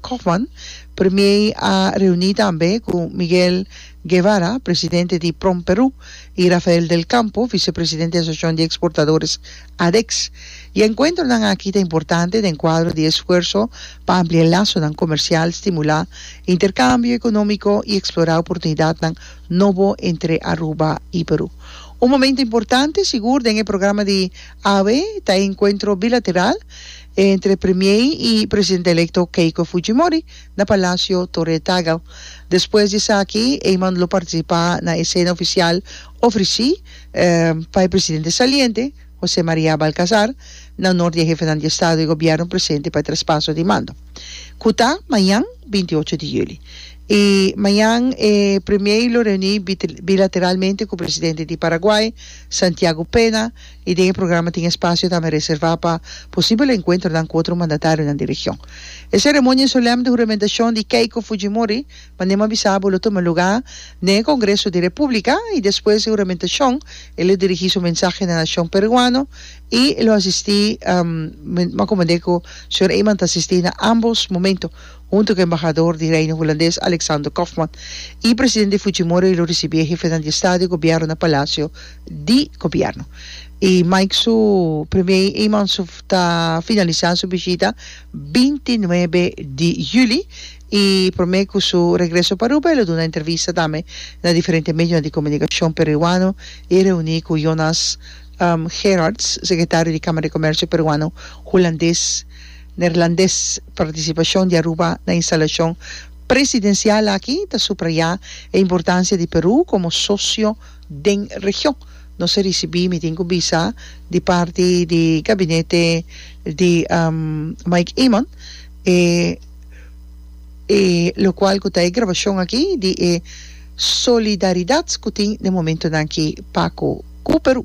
Koopman, Premier a reuni tambe ku Miguel Guevara, presidente di Promperú, i Rafael del Campo, visepresidente di Asosiashon di Eksportadores, ADEX. E enkuentronan aki ta importante den kuadro di e esfuerso pa ampliá lasonan komersial, stimulá interkambio ekonómiko i eksplorá oportunidatnan nobo entre Aruba i Perú. Un momentu importante sigur den e programa di awe ta e enkuentro bilateral, entre Premier i Presidente Electo Keiko Fujimori na Palacio Torre Tagle. Despues di esaki Eman lo participa na e cena oficial ofreci pa e Presidente saliente Jose Maria Balcazar na onor di e Hefenan di Estado i Gobierno presente pa e traspaso di mando cu ta mañan binti ocho di juli. I mañan e Premier lo reuni bilateralmente cu Presidente di Paraguay Santiago Pena y den e programa tin espacio tambe reserva pa posibel encuentronan cu otro mandatarionan di region. E ceremonia solemn di huramentacion di Keiko Fujimori, manera m'a bisa abo, lo tuma luga den e Congreso di Republica y despues di huramentacion e lo dirigi su mensahe na nacion Peruano y e lo asisti, m'a comprende cu Señor Eman ta asisti na ambos momento. Hunto ku embahador di Reino Hulandes Alexander Kofman i presidente Fujimori lo risibí e hefenan di estado i gobièrnu na Palasio di Gobièrnu. E Mike su primier i eiman su ta finalisá su bishita binti nuebe di juli i promé ku su regreso pa Aruba e lo duna entrevista tambe na diferente medionan di komunikashon peruano i reuní ku Jonas Gerards, sekretario di Kámara di Komèrsio Peruano Hulandes. Neerlandes partisipashon di Aruba na instalashon presidensial aki ta suprayá e importansia di Perú komo sosio den region. Nos a risibí, mi tin ku bisa, di parti di gabinete di Mike Eamon e e lokual ku ta e grabashon aki di e solidaridat ku tin den momentunan aki pa ku Perú.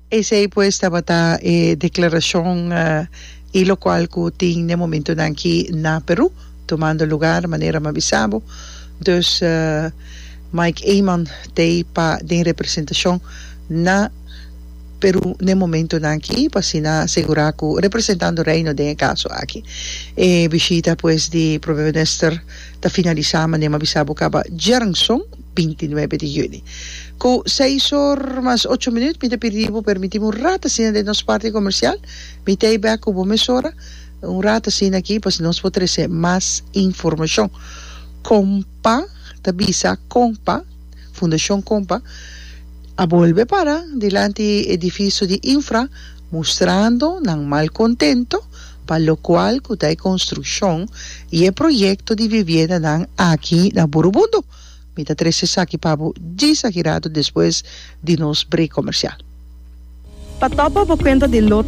Esei pues tabata e declaracion y locual cu tin n'e momentonan aki na Peru, tomando lugar manera m'a bisa bo. Dus Mike Eman t'ey pa den representacion na Peru n'e momentonan aki pa asina segura cu representando Reino den e caso aki. E bishita pues di Prome Minister ta finalisa mane m'a bisa bo caba djernson. binti nuebe di yüni. Ku seis or mas ocho minüt mi ta pidi bo permití bo un rat asina den nos parti komersial. Mi t'ei bèk ku bo mesora un rat asina aki pa nos por trese mas informashon. Kompa ta bisa Kompa, Fundashon Kompa a bolbe para dilanti edifisio di Infra mustrando nan mal kontento pa lokual ku ta e konstrukshon i e proyekto di viviendanan aki na Burubundo. Mi ta trece esaki pa bo djis aki rato despues di nos break comercial. Pa topa bo cuenta di lo.